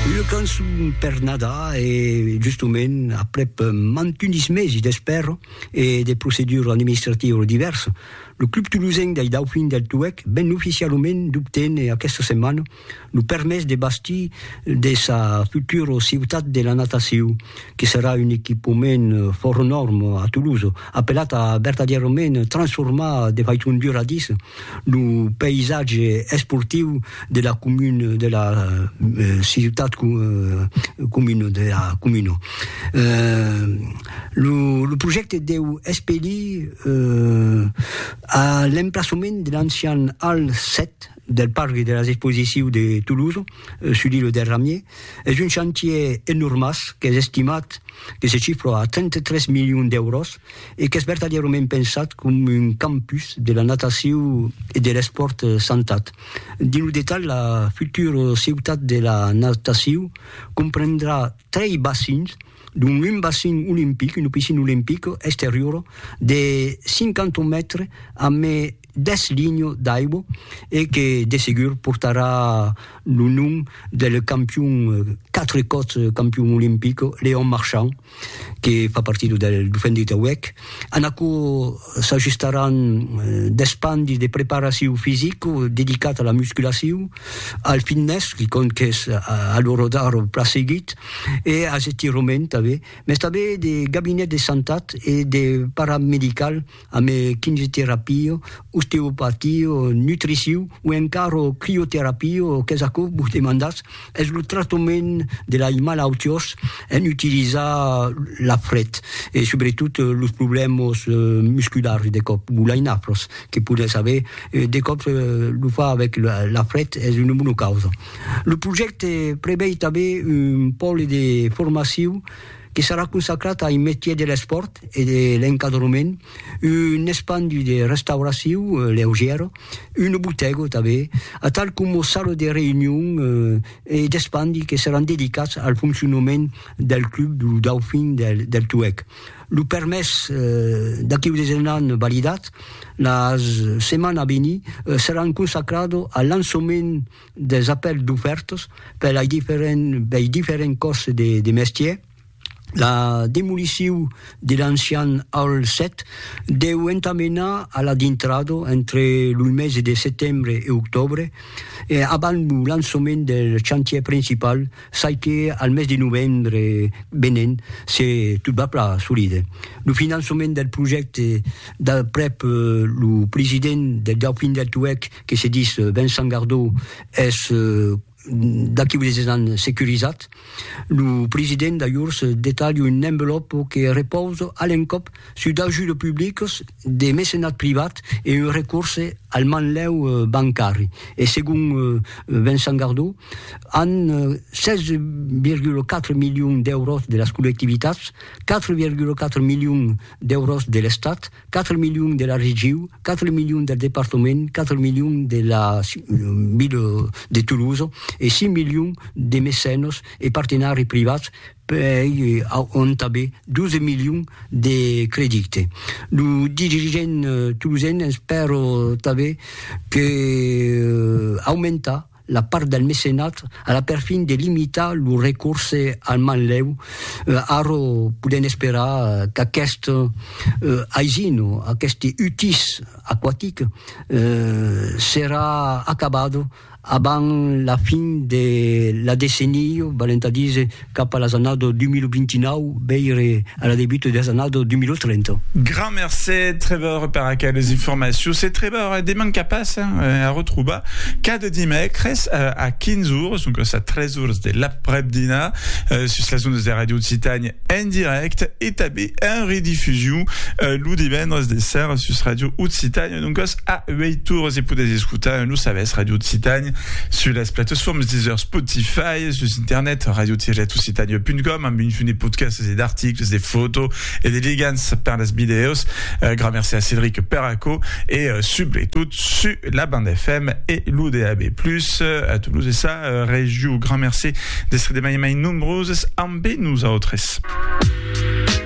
Una cançon per Nadar e justement aprèp mantunis mesi d'espèra e de procedura administrativa divèrsa, lo Club Tolosenc dei Daufins del Tuèch ven oficialament d'obténer aquesta setmana lo permés de bastir de sa futura ciutat de la natacion, que serà un equipament fòra nòrma a Tolosa, apelat a vertadièrament transformar de faiçon duradissa Lo païsatge esportiu de la comuna de la ciutat comuna de la comuna. Lo lo projècte deu espelir a l'emplaçament de l'ancian Hall 7 del parc de las exposicius de Toulouse sus l'îlot del Ramier. Es un chantier enormàs qu'es estimat que se chifra a 33 milions d'èuros. e qu'es vertadièrament pensat com un campus de la natacion e de l'espòrt santat. Dins lo detalh, la futura ciutat de la natacion comprendrà trei bacins, dont un bacin olimpic, una piscina olimpica exteriora de 50 mètres amb 10 linhas d'aigua e que de segur portarà lo nom del campion quatre còps campion olimpic Léon Marchand. que fa partida del Dofendit auec, en aquò s'ajustaràn d'espandi de preparacion fisica dedicat a la musculacion, al fitness, quicòm qu'es a l'ora d'ara plan seguit, e als estirament tanben, mès tanben de gabinet de santat e de paramedical. ame quimioterapio, osteopatio, nutriciu o encara crioterapio, qu'es aquò vos demandatz, es lo tractament de lai malautiós en utilizar la fret e subretot los problèmas musculars de còp, o lai nafros que podètz aver, de còp lo far avèc la fret es una bona causa. Lo projècte prevei tanben un pòle de formaciu, que serà consacrat ai metier de l'espòrt e de l'encadrement, un espandi de restauraciu leugièra, una botèga tanben, atal coma sala de reünion e d'espandi que seràn dedicats al foncionament del club du Dauphin del Tuèg. Lo permés d'aqueu desenhan validat, la setmana a venir seràn consacrada al lançament. des apèls d'ofèrtas per lei diferents bei diferents còrses de de mestièr la demoliciu de l'ancian Hall 7 deu entamenar a la dintrada entre loi mesi de setembre e octòbre e abans lo lançament del chantièr principal sai que al mes de novembre venent se tot va plan solide lo finançament del projècte d'aprèp lo president del Dauphin del Tuèlh que se dis Vincent Gardó es d'aquí unes 10 ans securizat, lo president d'ajors detalha un envelòpo que repausa a l'encòp sus d'ajudes publicas, de mecenat privat e un recorse al manlèu bancari. E segon Vincent Gardó, an 16,4 milions d'èuros de las collectivitats, 4,4 milions d'èuros de l'Estat, 4 milions de la regiu, 4 milions del departament, 4 milions de la ville de Toulouse e 5 milions de mecenos e partenari privats pei auntabe 12 milions de credite. Lo dirigent toulousen espèro tanbe que aumentar la part del mecenat a la perfin de limitar lo recorse al manlèu, ara podèm esperar qu'aquest aisin, aqueste utís aquatic serà acabat abans la fin de la decennia, valent a díser cap a las annadas 2029, veire a la debuta de las annadas 2030. Grand mercé, Trevor, per aqueles informacions. E Trevor, deman qu'a pas a retrobar cada dimècres a 15 ores, doncas a 3 ores de l'aprèp-dinar, sus las ondas de Radio Occitània en dirècte e tanben en redifusion lo divendres de sèra sus Radio Occitània. Doncas, a uèi torres e podètz escotar lo sabèth Radio Occitània sus las platesformes Deezer, Spotify, sus internet radio-occitania.com amb un fum de podcasts e d'articles, de fotos e de ligants per las vidèos. Gran merci a Cédric per aquò e subretot su la banda FM e lo DAB+, a Toulouse e sa regiu. Gran merci d'estre de mai e mai nombroses ambe nosautres.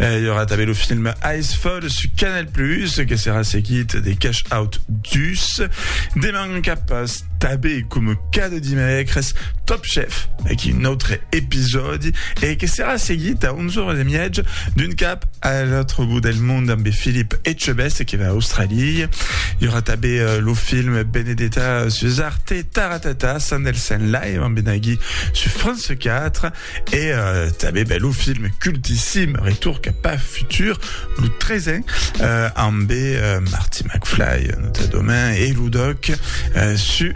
Eh, il y aura també le film Icefall sur Canal+, que serà seguit de Cash Out Dus. Deman cap també, com cada dimecres, Top Chef, avec un autre épisode, et que serà seguit à 11h30 d'une cap à l'autre bout del monde amb Philippe Etchebest qui va à Australie. Il y aura també euh, le film Benedetta sur Arte Taratata, Sandelsen Live, en Benagui sur France 4. E tanben, ben, lo film cultissim Retour cap a futur, lo tresen, ambe Marty McFly, nota domain, e lo doc su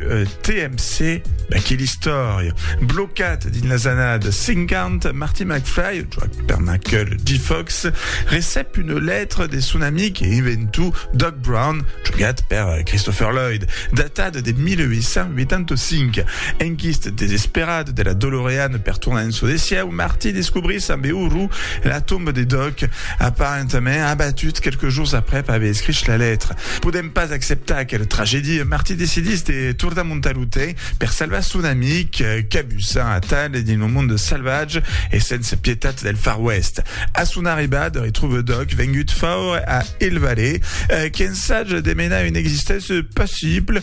TMC, ben, que l'istòria. Blocat dins las annadas 50, Marty McFly, joat per Michael J. Fox, recep una letra de son amic e inventor Doc Brown, jogat per Christopher Lloyd, datada de 1885. Enquist desesperat de la Dolorean per tornar en çò de sieu, Marty descobrís ambe orror la tomba de Doc, aparentament abatut quelques jours aprèp aver escrich la letra. Podent pas acceptar aquela tragèdia, Marty decidís de tornar montar lo tren per salvar son amic, cabussant atal dins lo monde salvatge e sens pietat del Far West. A son arribada, retrouve Doc vengut faure a Hill Valley, qu'ensage de menar una existéncia passible,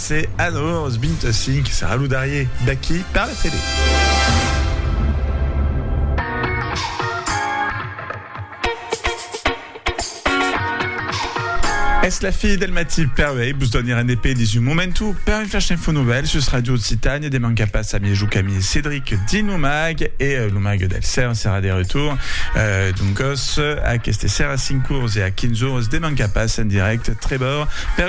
Se a 9 ors 25 saludarié d'aquí per la tele. Es la fi del matí per uèi, vos doni rendepé dins un momentu per un flash info novèl sus Radio Occitània, de manca pas a mièju qu'ami Cédric dins lo mag e lo mag del cèl serà de retour doncas aqueste serà 5 ors e a 15 ors de manca pas en dirèct trebor per